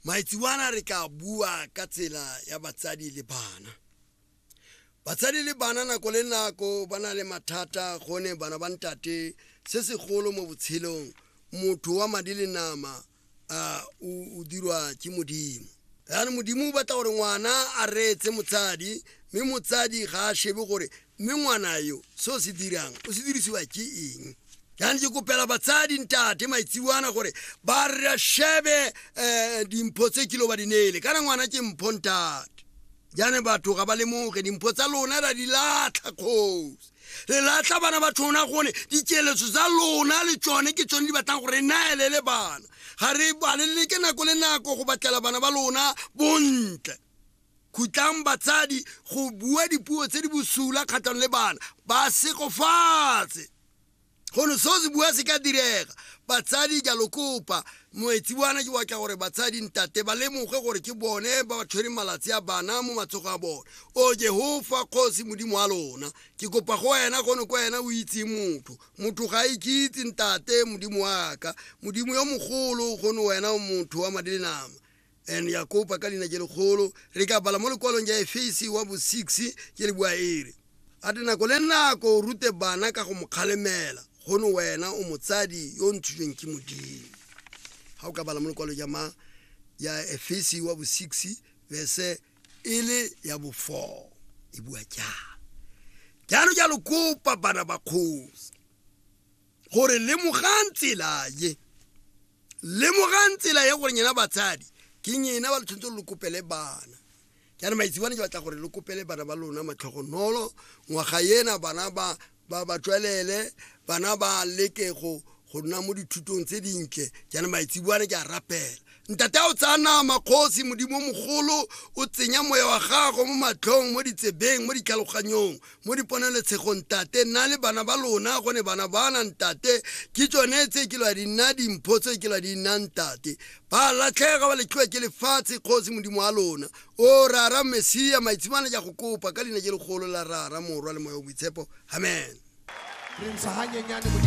Maitsebana re tla bua ka tsela ya batsadi le bana. Batsadi le bana nako le nako ba na le mathata gone bana ba ntate se segolo mo botshelong motho wa madi le nama a o o dirwa ke modimo. Yaanong modimo o batla gore ngwana a reetse motsadi mme motsadi ga a shebe gore mme ngwana yo se o se dirang o se dirisiwa ke eng jaanong ke kopela batsadi ntate maitsiwana gore ba re shebe um dimpho tse kilo ba di neele kana ngwana ke mpho ntate jaanong batho ga ba lemoge dimpho tsa lona ra di latlha kgosi re latlha bana ba tshona gone dikeletso tsa lona le tsone ke tsone di batlang gore re naelele bana ga re balelele ke nako le nako go batlela bana ba lona bontle Khutlang batsadi go bua dipuo tse di bosula kgatlhanong le bana, ba segofatse. Gono seo se bua se ka direga. Batsadi ke a lo kopa, moetsi bana ke batla gore batsadi ntate ba lemoge gore ke bone ba ba tshwereng malatsi a bana mo matsogo a bone. O Jehofa Kgosi Modimo wa lona, ke kopa go wena gono ko wena o itseng motho. Motho ga a ikitse ntate Modimo wa ka, Modimo yo mogolo gono wena o motho wa madi le nama. And ya kopa ka leina je legolo re ka bala mo lekwalong ja efesi wa bo 6 ke le bua ere a te nako le nako o rute bana ka go mo kgalemela gono wena o motsadi yo o ntshitsweng ke modimo ga o ka bala mo lekwalo ja ma ya efesi wa bo 6 verse e le ya bo 4 e bua jalo jalo jalo kopa bana ba kgosi gore lemogang tsela ye lemogang tsela ye gore nyena batsadi ke nyena ba le tshwanetse gore le kopele bana jaanong maitsibane ke batla gore le kopele bana ba lona matlhogonolo ngwaga ena bana ba ba ba tswelele bana ba leke go go nna mo dithutong tse dintle jaanong maitsibane ke a rapela Ntate a o tsaya nama, Kgosi, Modimo mogolo, o tsenya Moya wa Gago mo matlhong, mo ditsebeng, mo ditlhaloganyong, mo diponelotshegong, Ntate. Nna le bana ba lona, gone bana bana, Ntate, ke tsone tse ke lwa di nna dimpho tse ke lwa di nna, Ntate. Ba latlhega, ba letlhiwa ke lefatshe, Kgosi, Modimo wa lona. O Rara Mesia, maitshimane ke a go kopa, ka Leina je legolo la Rara, Morwa, le Moya wa Boitshepo. Amen. Re ntsha hanyenyane, Modimo.